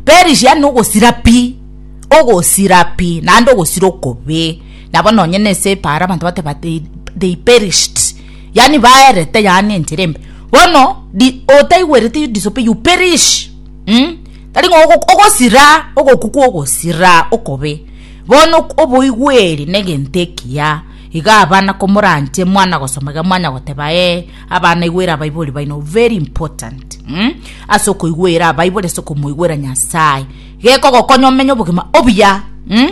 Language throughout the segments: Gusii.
Perisia nogosira pi, ogosira pi, naende ogosira okobe, nabo nonye nese epaaro abanto bateba they they perished, yaani baerete yaani enchera embe. Bono di otaigwereti you disobe you perish umm tari ng'a ogok ogosira ogoku kwa ogosira okobe. Bono ok oboigweri na egento ekiya, iga abana komoranche mwana gosoma iga mwanya goteba ee. Abana igwera abaibori baino very important mm? ase okoigwera abaibori ase okomoigwera nyasaye gekogokonya omenye obogima obuya mm?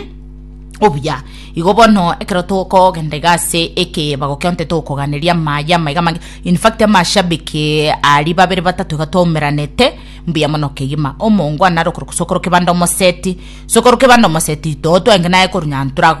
obuya igo bono ekero tokogenda iga ase eke bagokionte tokoganeria amaya amaiga mange in fact amashabiki ari babere batato iga twaumeranete mbuya mono kegima omongwana are okoro sokoro kebanda omoseti sokoro kebanda omoseti to twaenge naye koru nyantorago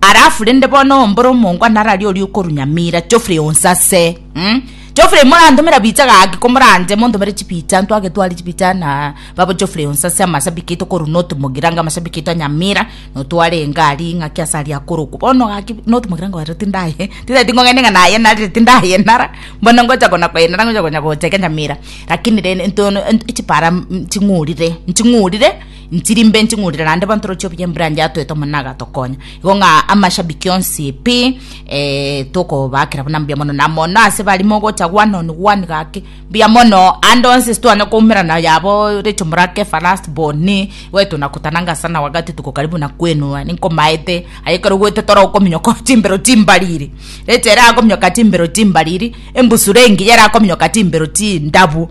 Alafu rende bono ombore omongwa narari oria okorunyamira Geoffrey onse ase. Umm. Geoffrey morantomera bicha gaki komoranche montomere chibicha ntwagetwari chibicha na babo Geoffrey onse ase amashabiki aito koru not mogiranga amashabiki aito nyamira notware engari ng'aki ase aria akorokwa bono gaki not mogiranga oyo tindaye tindeti ngogende ng'a nayenarire tindayenara bono ngocha kona koyenara ngocha konya gocha iga nyamira lakini rende ntono chipara ching'urire nching'urire. Ntiri mbe nting'urire naende bantoroche buya embranch atoete omonene agatokonya. Igo ng'a amashabiki onsi pi eh, tokobaakera buna mbuya mono na mono ase bari mogocha one on one gaki mbuya mono ande onsi stwane koumerana yabo Rachel Morake first born wetu na kutananga sana wakati tuko karibu na kuenua ninkomaete aye ekero ogwete toro okominyoka chimbero chimbariri Rachel erakominyoka chimbero chimbariri embusuro engiya erakominyoka chimbero chindabu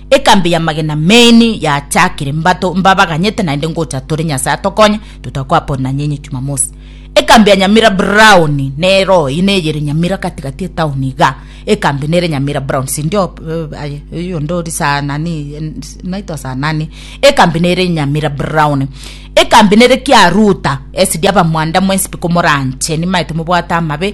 Ekambi y'amagena main yachakire mbato mbabaganyete naende ngocha tore Nyasaye atokonye totakoapon na nyenye Jumamosi. Ekambi ya Nyamira Brown nero oyi neyere Nyamira gati gati etown iga. Ekambi nere Nyamira Brown sindio aye oyo onde ori saa nani naitwa saa nani. Ekambi nere Nyamira Brown. Ekambi nere Kiaruta esidi abamwanda mwensipi komoranche nimaete mobwate amabe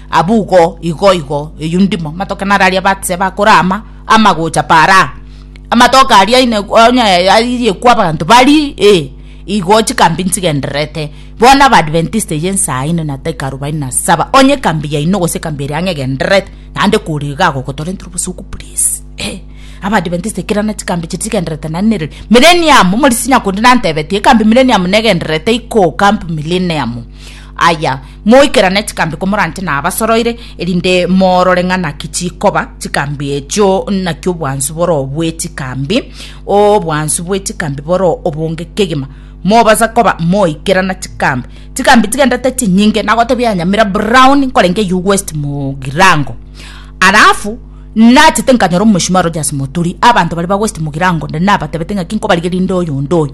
Abugo igoigo eyio ndimo amatoke nararia abatse bakore ama amagocha para amatoke aria ine onye ayirie kwa abanto bari eh igo chikambi nchigendererete bono abadventist eye ensaa ine na taika arobaini na saba onye ekambi yaino gose ekambi eria ang'e egendererete naende kore iga agogotorentia ore obosuku please eh abadventist kera na chikambi chiria chigendererete naende nere millennium omorisia nyakundi nantebetie ekambi millennium negendererete iko camp millennium. Aya, moikerane chikambi komorante nabasoroire, erinde morore ng'a naki chikoba chikambi echio, naki obwansu boro bwe chikambi, obwansu bwe chikambi boro obonge kegima. Mobasa koba moikerana chikambi. Chikambi chigendete chinyinge, nagotebia Nyamira Brown nkorenge eyio West Mugirango. Alafu nachete nkanyora omoshimiwa Rogers Moturi, abanto baria ba West Mugirango onde nabatebete ng'aki nkobarigeria inde oyonde oyo.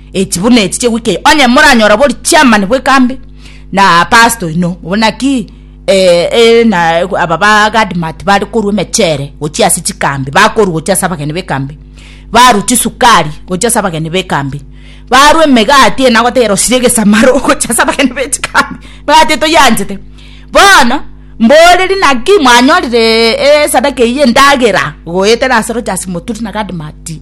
Echi buna echi chegwika eye, onye moranyora bori chairman bw'ekambi na pastor oino, obo naki eh, eh, na eh, aba ba Gadmat bare korwa emechere gochia ase chikambi, bakorwa gochia ase abageni b'ekambi, barwa chisukari gochia ase abageni b'ekambi, barwa emegati eye nagotebera osire egesamaro gochia ase abageni be chikambi, emegati eye toyanchete. Bono mboreri naki mwanyorire esadaka eyio endagera goetera ase Rogers Moturi na Gadmati.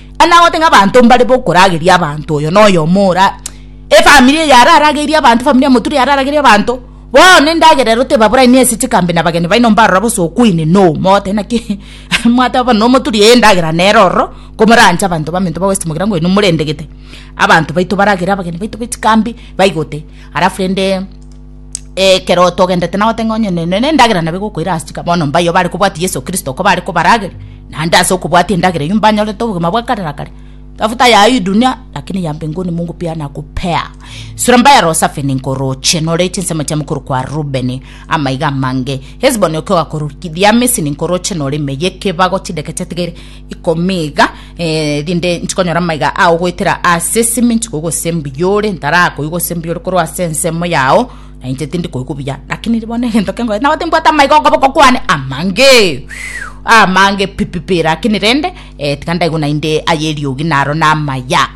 Anagote ng'a abanto mbare bokorageria abanto oyo na oyomo ora efamiri eye ara aragerie abanto efamiri ya moturia ara aragerie abanto bono endagera ero tebaborani ase chikambe na bageni baino mbarora bosa okoinena oo mogotebi naki mwateba bono na omoturia ee endagera nere ororo komoranche abanto baminto bagosesimogira nkoinwa morende gete abanto baito baragere abageni baito be chikambi baigote alafu rende. Ekero togendete nabo teng'e onye ne nendagera nabo egokoira ase chika bono mbayo bare kobwati Yeso Kristo ko bare kobarage naende ase okobwati endagera eyio mbanyorete obogima bwa kare na kare. Tafuta ya hii dunia lakini ya mbinguni Mungu pia anakupea. Sura mbaya roho safi ninkoroche nore chinsemo chia mokoro kwa Rubeni amaiga amange. Hesboni oke ogakorokithia Misiri ninkoroche nore ime yekebago chideke chatigaire ikomi iga, eh, rinde nchikonyora amaiga ao goetera ase esimi nchikoigwa ase mbiyore ntarakoigwa ase mbiyore korwa ase ensemo yao na inche tindi koigwa buya lakini bono egento kengoe nabote mbwate amaiga okoboko kwane amange amange pipipi lakini rende eh, tiga ndaigwa naende aye eriogi naro namaya